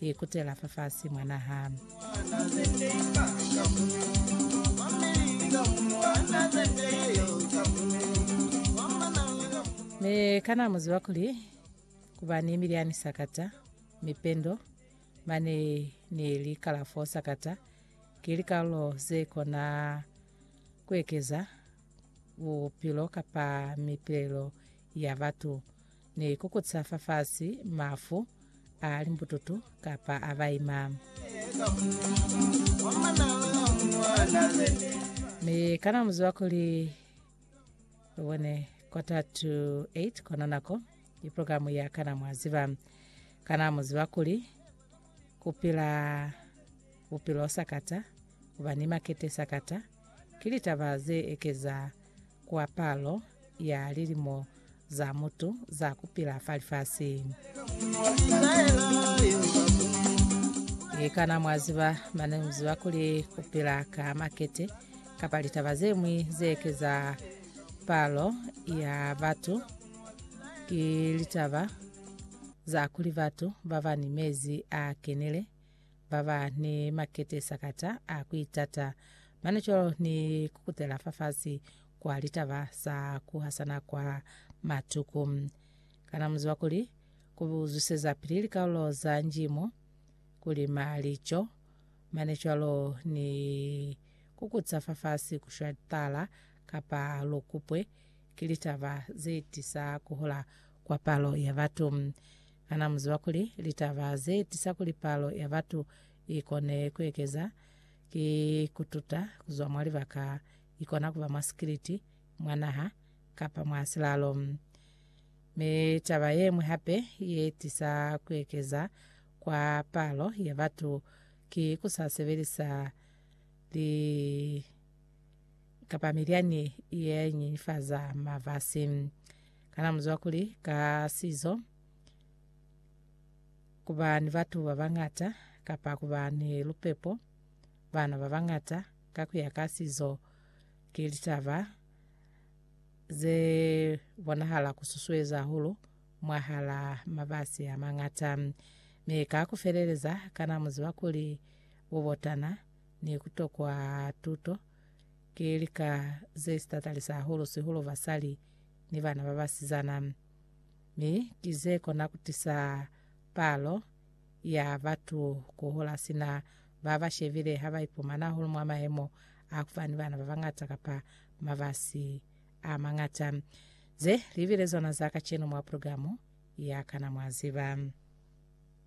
I kutela fafasi mwa naha. Mi kana mu ziba kuli ku ba ni mili ya misakata, mipendo, mane ni likalafo sakata ki likalulo ze kona ku ekeza bupilo kapa mipilelo ya batu? Ni kukuta fafasi mafu a limbututu kapa a baima. Mi kana muziba kuli lubone quarter to 8 kona nako i programu ya kana mwaziba kana muziba kuli kupila bupilo sakata kuba ni makete sakata Ki litaba ze ekeza kwa palo ya lilimo za mutu za ku pila fa lifasi. Kana mwa ziba mane mu ziba kuli ku pila ka makete kapa litaba ze ñwi ze ekeza palo ya batu ki litaba za kuli batu ba ba ni mezi a kenile? baba ni makete sakata a kuitata mane cwalo ni kukutela fafasi kwa litaba sa kuhasana kwa matuku. Kana muziba kuli kubuzwiseza pili likaulo za njimo kulima lico mane cwalo ni kukutsa fafasi kushwa tala kapa lokupwe ki litaba zetisa kuhola kwa palo ya batu. Kana mu ziba kuli litaba ze tisa kuli palo ya batu i kone ku ekeza ki ku tuta ku zwa mwa libaka i kona ku ba mwa sikiliti, mwa naha, kapa mwa silalo? Mi taba ye ñwi hape ye tisa ku ekeza kwa palo ya batu ki ku sa sebelisa li kapa milyani ye nyenyefaza mafasi. Kana muzwa kuli ka sizo ku ba ni batu ba bañata kapa ku ba ni lupepo bana ba bañata ka ku ya ka sizo ki litaba ze bonahala ku susueza hahulu mwahal'a mabasi a mañata? Mi ka ku feleleza, kana mu ziba kuli bubotana ni ku tokwa tuto Ki lika ze si tatalisa hahulu sihulu basali ni bana ba basizana, mi ki ze kona ku tisa palo ya batu ku hola sina ba ba shebile ha ba ipumana hahulu mwa mayemo a ku ba ni bana ba bañata kapa mabasi a mañata. Ze li bile zona za kacenu mwa pulugalamu ya Kana Mwa Ziba.